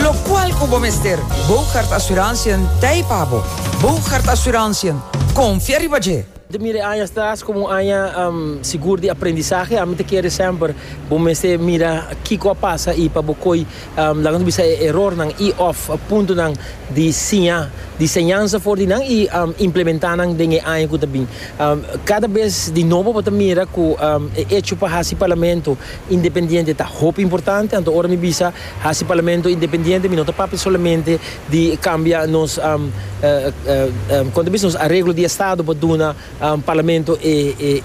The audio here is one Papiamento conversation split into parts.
Locual cu bo mester Boogaard Assurantiën t'ei pa bo. Boogaard Assurantiën, confia riba dje! Ta mira e aña atras como un aña sigur di aprendizahe. Ami ta kere semper bo mester mira kico a pasa y pa bo coy, laga nos bisa, e erornan y of puntonan di siña, di señansa for di nan y implementa nan den e aña cu ta bin. Cada bes di nobo bo ta mira cu e hecho pa haci Parlamento independiente ta hopi importante, anto ora mi bisa Hasi parlamento independiente, mi no ta papia solamente di cambia nos conta bisa nos areglo di estado pa duna parlamento e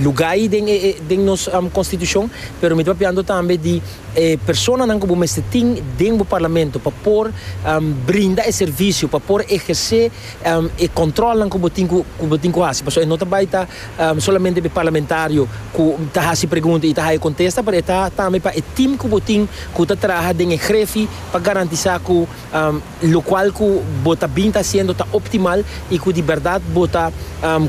luga ayi den nos constitucion, pero mi ta papiando tambe di e personanan cu bo mester tin den bo parlamento pa por brinda e servicio, pa por eherce. e controlnan cu bo tin cu cu bo tin cu haci pasobra e no ta bay ta solamente pa e parlamentario cu ta haci pregunta y ta haya contesta pero e ta tambe pa e team cu bo tin cu ta traha den e grefi pa garantisa cu locual cu bo ta bin ta haciendo ta optimal y cu di berdad bo ta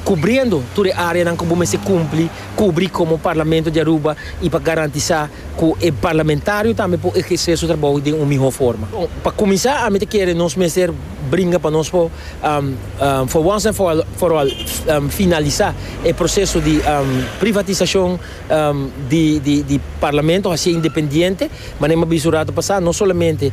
cubriendo tur e areanan cu bo mester cumpli Kubri komo Parlamento di Aruba i pa garantisá ku e parlamentario tambe por ehersé su trabou den un mihó forma. Pa kuminsá ami ta kere nos mester bringa pa nos por for wans en for all finalisá e proseso di privatisashon di Parlamento, hasié independiente, manera mi a bisa un ratu pasá, no solamente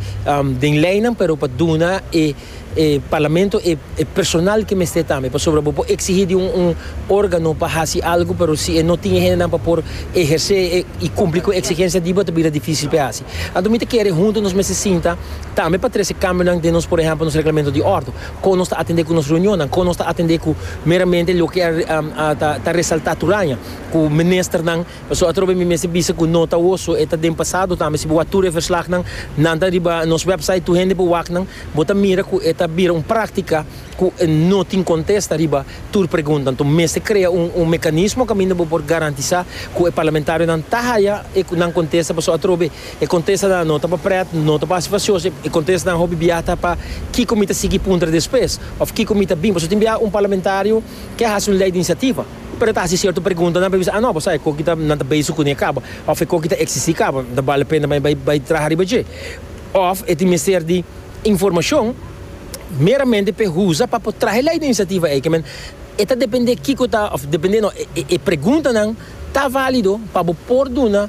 den leinan pero pa duna e. E parlamento e personal ke mester tambe, pasobra bo por eksigí di un órgano pa hasi algu, pero si e no tin e hendenan pa por ehersé i kumpli ku e eksigensia di bo ta bira difísil pa e hasi. Anto mi ta kere huntu nos mester sinta tambe pa trese kambionan den nos, por ehèmpel, nos Reglamento di Órdo, kon nos ta atendé ku nos reunionnan, kon nos ta atendé ku meramente loke a ta resaltá tur aña ku ministernan. Pasobra atrobe mi mester bisa ku no ta woso, e ta den pasado tambe. Si bo wak tur e verslagnan, nan ta riba nos wèpsait, tur hende bo waknan, bo ta mira ku e ta bira un práktika ku no tin kontesta riba tur pregunta. Anto mester krea un mekanismo kaminda bo por garantisá ku e parlamentarionan ta haya e nan kontesta, pasobra atrobe e kontestanan no ta pa prèt, no ta pa hasi fasioso, e kontestanan hopi biaha ta pa kiko mi ta sigui puntra despues òf kiko mi ta bin. Pasobra tin biaha un parlamentario ke a hasi un lei di inisiativa. Pero ta hasi cierto pregunta nan pa e bisa, ah no, bo sa e koki ta, nan ta bezig kuni e kaba, of e koki ta existi kaba, no ta bale pena pa mi bai bai traha riba dje. Of e tin mester di informacion meramente pa e usa pa por traha e ley den iniciativa ey. Kiamen e ta depende kiko ta, of depende no, e preguntanan ta valido pa bo por duna.